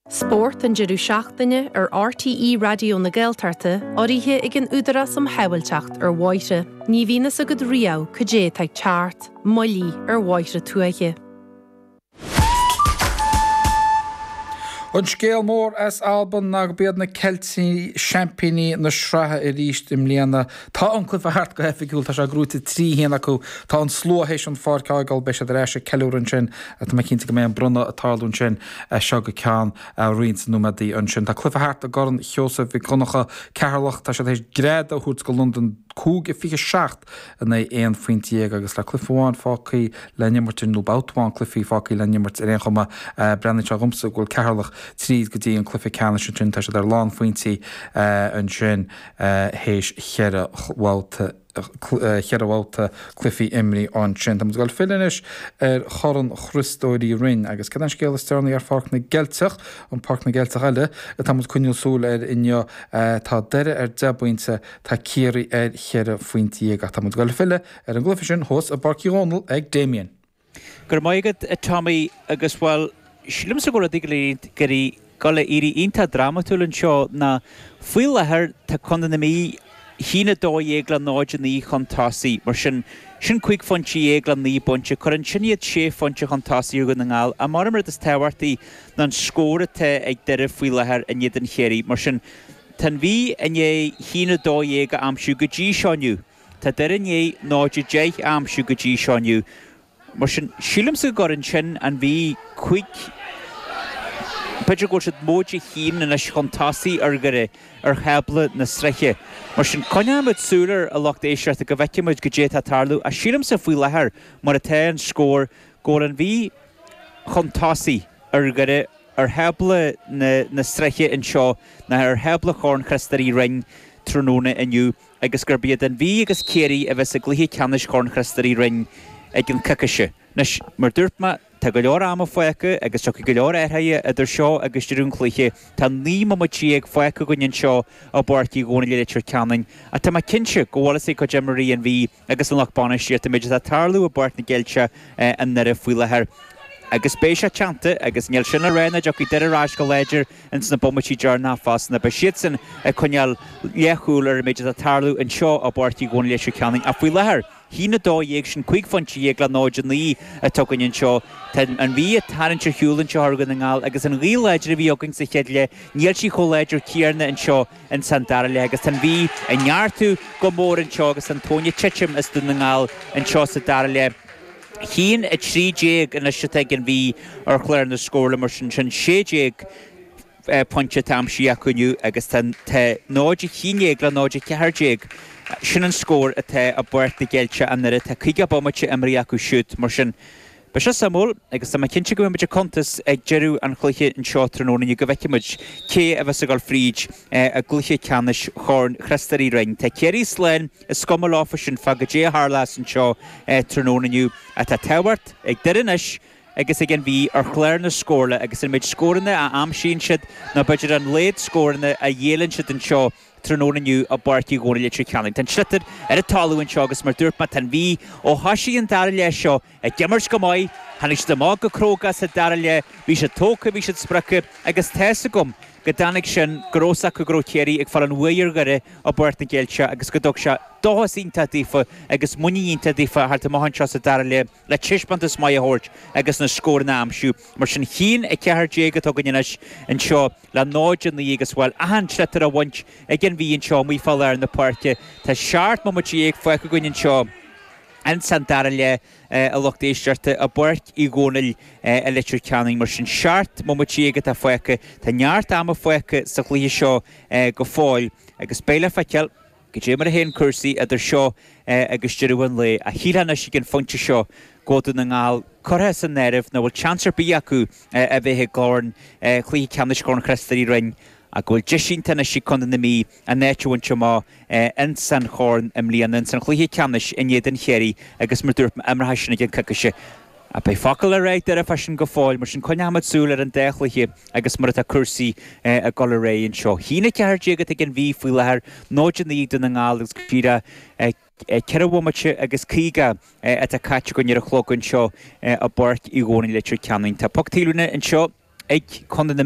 Spórt an deireadh seachtaine ar RTÉ Raidió na Gaeltachta, urraithe ag an Údarás um Shábháilteacht ar Bhóithre. Ní bhíonn fhios agat riamh cad é atá ag teacht, moilligh ar bhóithre tuaithe. An scéal mór as Alban ná go b'iad na Ceiltigh seaimpíní na sraithe arís i mbliana Tá an cluiche thart go hoifigiúil, tá sé gnóite trí haon acu, tá an slua théis an pháirc a fhágáil, beidh siad ar ais ag ceiliúradh ansin, tá mé cinnte go mbeidh an bronnadh ag tarlú ansin as seo go ceann roinnt nóiméadaí ansin. Tá cluiche thart i gCorn Sheosaimh Mhic Dhonncha, Ceatharlach, tá siad théis greadadh a thabhairt do Londain cúig a 27 in aghaidh 11 phointe agus le cluiche amháin fágthaí le n-imirt ar, nó babhta amháin cluichí fágthaí le n-imirt ar aon chuma, breathnaíonn sé dhomsa go bhfuil Ceatharlach tríd go dtí an cluiche ceannais ansin, tá siad ar lánphointí ansin. théis cheithre bhabhta cheithre bhabhta cluichí imrithe ansin. Táimid ag dul filleadh anois ar Chorn Chriostóir Uí Rinn agus cad é an scéal is deireanaí ar Pháirc na gCeilteach, an Páirc na gCeilteach eile a táimid coinneáil súil air inniu. Tá Doire ar dheich bpointe, tá Ciarraí ar cheithre phointe dhéag ach táimid ag dul filleadh ar an gcluiche sin thuas i bPáirc Uí Dhónaill ag Damien. Go raibh maith agat, a Tommy, agus, bhuel, sílimse go bhfuil rudaí ag dul ag éirí, ag dul a éirí iontach drámatúil anseo ná, faoi láthair, tá Contae na Mí, 1 12 le 0 9 chun tosaigh, mar sin, sin cúig phointe dhéag le naoi bpointe, cuireann sin iad sé phointe chun tosaigh ar Dhún na nGall, ach mar a deirim an rud is tábhachtaí ná an scór atá ag Doire faoi láthair in éadan Chiarraí, mar sin, tá an Mhí i ndiaidh 1 12 a aimsiú go dtí seo inniu. Tá Doire i ndiaidh 0 10 a aimsiú go dtí seo inniu, mar sin sílimse go gcuireann sin an Mhí cúig b'fhéidir go bhfuil siad móide a haon anois chun tosaigh ar Dhoire ar thábla na sraithe. Mar sin coinneoimid súil air, a lucht éisteachta, go bhfeicfimid cad é atá tarlú, ach sílimse faoi láthair, mar atá an scór, go bhfuil an Mhí chun tosaigh ar Dhoire ar thábla na sraithe anseo ná ar thábla Chorn Chriostóir Uí Rinn tráthnóna inniu. agus gurb iad An Mhí agus Ciarraí a bheas i gcluiche ceannais Chorn Chriostóir Uí Rinn i gceann coicíse. Anois, mar dúirt mé, tá go leor ama fágtha agus tiocfaidh go leor athruithe idir seo agus deireadh an chluiche. Tá naoi mbomaite déag fágtha againn anseo i bPáirc Uí Dhónaill i Leitir Ceanainn, ach tá mé cinnte go bhfuil a fhios ag cuid imreoirí An Mhí, agus an lucht bainistíochta an méid atá ag tarlú i bPáirc na gCeilteach i nDoire faoi láthair agus beidh sé teannta agus níl sin le rá nach dtiocfaidh Doire ar ais go láidir ins na bomaití deireanacha fosta ná beidh siadsan ag coinneáil leathshúil ar an méid atá tarlú anseo i bPáirc Uí Dhónaill Leitir Ceanainn ach faoi láthair 1 12 sin cúig phointe dhéag le 0 9 atá againn anseo tá an Mhí ag tarraingt ar shiúl anseo thar Dhún na nGall agus an ghaoth láidir a bhí againn sa chéad leath níl sí chomh láidir céarna anseo ins an dara leath agus tá an Mhí ag neartú go mór anseo agus an tóin ag titim as Dún na nGall anseo sa dara leath. Cionn 13 anois atá ag an Mhí ar chlár na scórála mar sin sin 16 pointe atá aimsithe acu inniu agus tá tá 0 a cionn déag le 0 14 sin an scór atá i bPáirc na gCeilteach i nDoire tá caoga bomaite imeartha acu siúd mar sin Beidh sé suimiúil, agus tá mé cinnte go mbeimid ag cuntas ag deireadh an chluiche anseo tráthnóna inniu go bhfeicfimid cé a bheas ag dul fríd i gcluiche ceannais Chorn Chriostóir Uí Rinn. Tá Ciarraí slán, is cuma leofa sin, fá cad é a tharlas anseo tráthnóna inniu. Ach tá tábhacht ag Doire anois agus ag An Mhí ar chlár na scórála agus an méid scóranna a aimsíonn siad, nó b'fhéidir an laghad scóranna a ghéilleann siad anseo tráthnóna inniu i bPáirc Uí Dhomhnaill Leitir Ceanainn. Tá an sliotar ar an talamh anseo agus mar dúirt mé, tá An Mhí, ó thoisigh an dara leath seo, Ag imirt go maith. Tháinig siad amach go cróga sa dara leath, bhí siad tógtha, bhí siad spreagtha agus tá's agam go dtáinig sin, go raibh 'fhios acu go raibh Ciarraí ag fáil an bhuaidh ar Dhoire i bPáirc na gCeilteach agus go dtug sé dóchas iontach daofa agus muinín iontach daofa theacht amach anseo sa dara leath le taispeántas maith a thabhairt agus na scóranna a aimsiú. Mar sin cionn 14 atá againn anois anseo le 0-9 agus, bhuel, achan sliotar á bhaint ag an Mhí anseo amuigh fá lár na páirce. Tá seacht mbomaite déag fágtha againn anseo. Ins an dara leath, a lucht éisteachta, i bPáirc Uí Dhomhnaill, i Leitir Ceanainn, mar sin, seart, mo mo tí agat á phhaoca. Tá neart ama fágtha sa chluiche seo go fóill, agus beidh le feiceáil cad é mar a théann cúrsaí idir seo agus deireadh an lae. Ach shílfeá anois ag an phointe seo go Dún na nGall curtha as an áireamh nach bhfuil seans ar bith acu a bheith i gCorn, Cluiche Ceannais Chorn Chriostóir Uí Rinn ach go bhfuil deis iontach anois ag Contae na Mí, an áit a bhaint amach ins an Chorn i mbliana, ins an chluiche ceannais in éadan Chiarraí agus mar dúirt mé imreofar sin i gcionn coicíse. Beidh focal le rá ag Doire fá sin go fóill, mar sin coinneoimid súil ar an dá chluiche agus mar atá cúrsaí ag dul ar aghaidh anseo. Cionn 14 atá ag an Mhí faoi láthair, 0-9 Dún na nGall agus go fíor 4 bhomaite agus 50 atá caite againn ar an chlog anseo i bPáirc Uí Dhónaill, Leitir Ceanainn. Tá poc taobhlíne anseo ag Contae na.